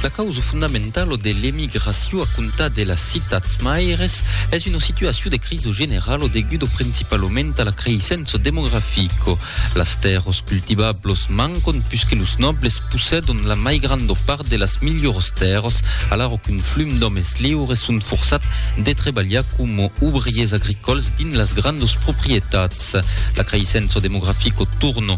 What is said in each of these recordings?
La causa fondamentala de l'emigracion a comptar de las citats maires es una situacion de crisa generala deguda principalament a la creissença demografica. Las tèrras cultivablas mancan puisque los nobles possèdan la mai granda part de las milhoras tèrras alara qu'un flum d'òmes liures son forçats de trebalhar coma obriers agricòls dins las grandas proprietats. La creissença demografica torna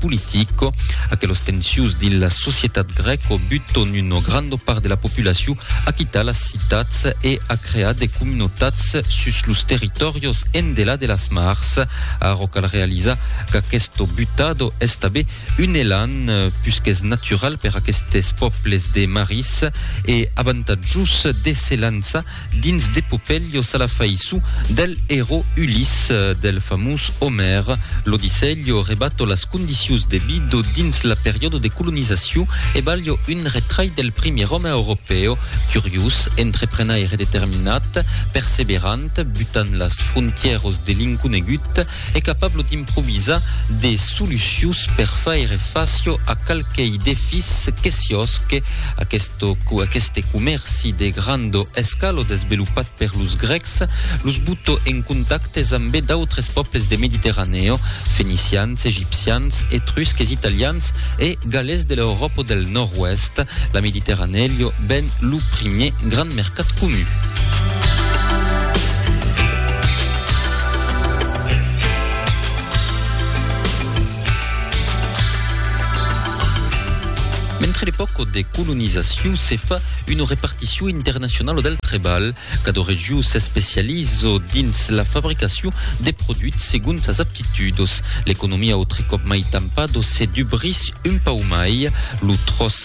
politico. Aquelos tensius dins la societat grèco buton una granda part de la populacion a quitar las citats e a crear de comunotats sus los territòrios endelà de las mars. Ara cal realizar qu'aquesto butado es tabé un elan pus qu'es natural per aquestes pòbles de maris e avantatjus de se lançar dins d'Epopelio Salafaissu del erò Uliss del famós Omèr, l'Odisselio rebato las condicius de bido dins la periòdo de colonizaciu e balho un retrai del primièr òme europèo, curiós, entreprenaire determinat, perseverant, butant las frontièros de l'inconegut, e capablo d'improvisar de solucions per faire facio a qualquei defís que siosque aquesto qu aqueste comèrci de grando escalo desvelopat per los grècs los boto en contactes ambe d'autres pòbles de Mediterranèo, fenicians, egipcians, etrusques, italians e galés de l'Euròpo del Nòrd-Oèst, la Mediterranèo ben lo primier grand mercat comun. Mentre l'epòca de colonizacion se fa una reparticion internacionala del trebalh, cada region s'especializa dins la fabricacion de produits segon sas aptitudas. L'economia autre còp mai tampada se dubrís un pauc mai, lo tròç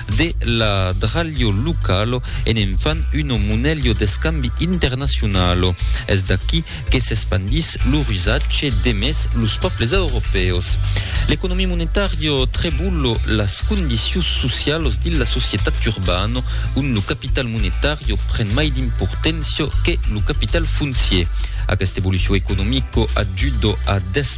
De la dralho lucalo e ne'n fan uno monelho d'escambi internacionalo. Es d'aquí que s'espandís lo rusatge demés los pòbles europèus. L'economia monetària trebullo las condicions socialos dins la societat urbano, ont lo capital monetàrio pren mai d'importància que lo capital foncier. Aquesta evolucion economica ajuda a desmembrar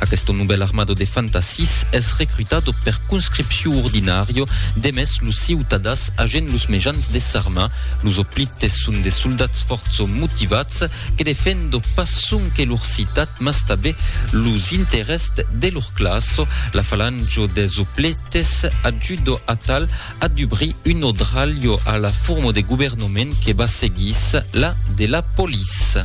Aqueste novèl armado de fantassis es recrutado per conscripcion ordinària demest los ciutadans agent los mejans de s'armar. Los hoplites son de soldats fòrça motivats que defendo pas sonque lor citat mas tabé los interèsts de lor classa. La falange des hoplites ajuda atal a dubrir un odralh a la forma de governament que va seguís la de la police.